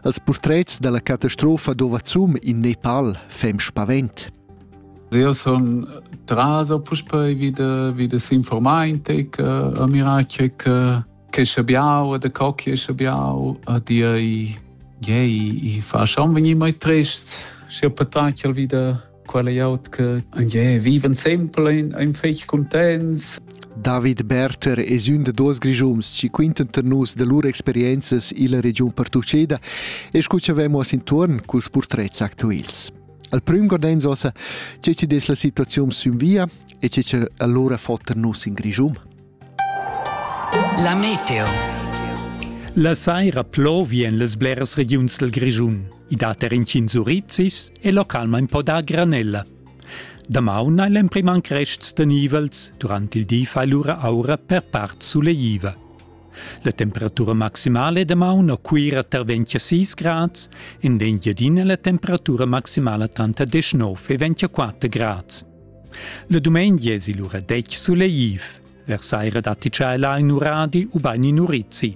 als purtrets dalla catastrofa d'Ovazum in Nepal fem spavent. Io sun traso puspei wie de, wie de s'informaintic uh, a miracec uh, che schabiau de cocchie schabiau a dir i, yeah, i, i fa schon venir mai trist. Si ho patacel wie de quella aut che je viven sempre in, in fech contents. David Berter es ün da duos grischums chi quintan ter nus da lur experienzas illa regiun pertucceda e scu cha vemos intuorn culs purtrets actuels. Al prüm gordens ossa che ci des la situaziun sün via e che ci allura fotter nus in Grischum. La meteo. La saira plovien las bleras regiuns del Grischun. I dat er intgins urizis e localmain po dar granella. Damaun hai l'emprima crests tenivels, durant il di fa lura aura per part suleiva. La temperatura maximale damaun a Cuira tar 26 grads, in d'Engiadina la temperatura maximala tranter 19 e 24 grads. Le dumengi es il ura detg suleiv. Versaira datti tschella in uradi u bain in urizi.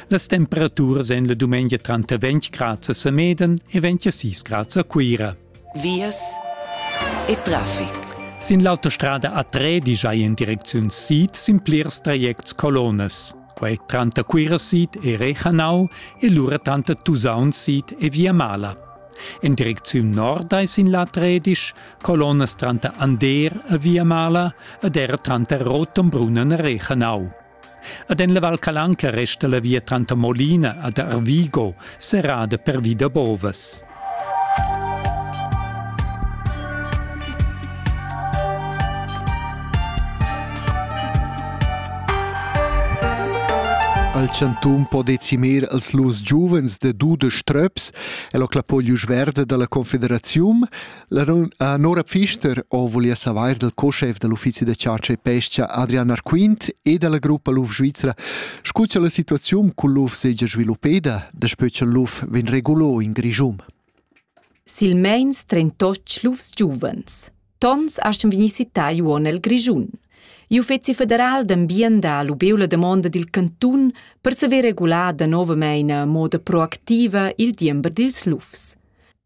Las temperaturas en le dumengia tranter 20 grad a Semeden e 26 grad a Cuira. Vias e traffic. Sin l'autostrada A3 digia in direcziun sid sin plirs trajects colonas. Quai tranter Cuira sid e Rechanau e lura tranter Tusaun sid e Via Mala. En direcziun nord ei sin la Tredisch colonnas tranter Ander e Via Mala ed era tranter Rotenbrunn e Rechenau. Ad en la Val Calanca resta la via tranter Molina ed Arvigo serrada pervi da bovas. al chantun po decimir als lus giuvens de dude ströps e lo clapoglius verde dalla confederaziun La Nora Pfister ho voulia savair dal co-schef da l'uffizi da chatscha e pes-cha Adrian Arquint e da la gruppa Luf Svizra, scu cha la situaziun cul luf segia sviluppeda, daspö cha'l luf vegn regulo in Grischun. Silmeins trentotg lufs giuvens. Tons astgan vegnir cittai uonn el Grischun. Il Uffeci federal d'ambient ha lubeu la damonda dil cantun per saver regular da novamein a moda proactiva il diember dils lufs.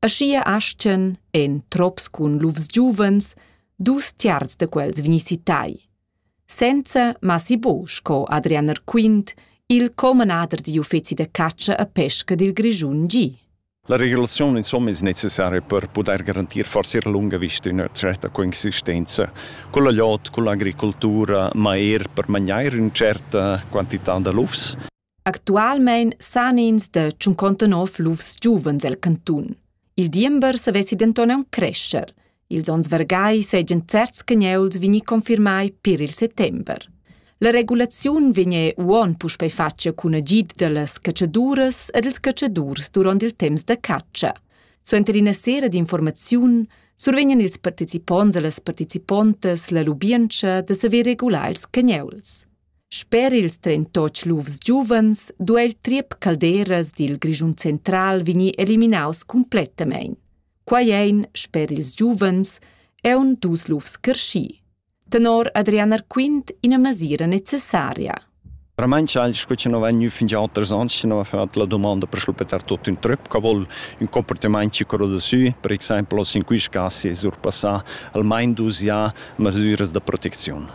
Aschia astgan, en trops cun lufs giuvens, dus tiarz da quels vegnir citai. Senza massi buc, sco Adrian Erquint, il commenader digl uffeci da catscha e pesca dil Grischun gi. La regulaziun insomma è necessaria per poter garantir forse a lunga vista una certa coexistenza con la lotta, con l'agricoltura, ma er per mangiare una certa quantità da lufs. Actualmein san ins da tschuncontanov lufs giuvens el cantun. Il diember savessi denton aunc crescher. Ils onns vargai seigien certs che neuls vegni confirmai per il settember. La regulaziun vegne uon puspei fatga cun agid dallas catschaduras ed ils catschadurs duront il temps da catscha. Suenter ina sera d'informaziun survegnan ils participonts e las participontas la lubientscha da saver regular ils cagneuls. Sper ils trentotg lufs giuvens duei il triep Calderas dil Grischun central vegnir eliminaus cumplettamein. Quei ein, sper ils giuvens, aunc dus lufs carschi. Tenor Adrian Arquint ina mesira necessaria. Veramente eigentlich gut noch wenn nicht fünf Jahre sonst noch hat la domanda per schluppar tutto in trip che vuol un comportamento quello da sü per esempio in quei casi è surpassà almeno dus Jahre mesiras da protezione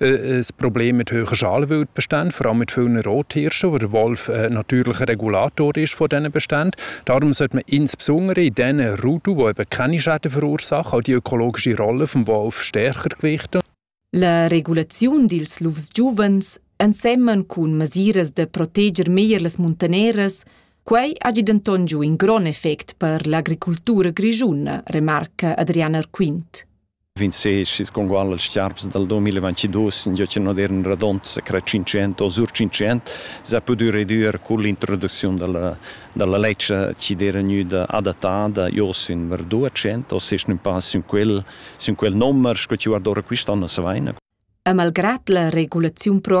ein Problem mit hoher Schalwelt bestehen, vor allem mit vielen Rothirschen, wo der Wolf ein natürlicher Regulator ist von diesen Beständen. Darum sollte man insbesondere in diesen Ruten, die eben keine Schäden verursachen, auch die ökologische Rolle des Wolfs stärker gewichten. La regulaziun dils lufs giuvens ensemen cun mesiras da proteger meglier las muntaneras, quei hagi denton giu in grond effect per l'agricultura grischuna, remarca Adriana Arquint. 26 con gual als charps dal 2022 in giocin modern radont sa cra 500 o sur 500 sa pudü redüer cun l'introducziun dalla dalla ledscha chi d'era gnüda adattada jo sün ver 200 o sech ün pa sün quel sün quel nommer sco chi guardora quist'anno sa vaina. E malgrad la regulaziun proactiva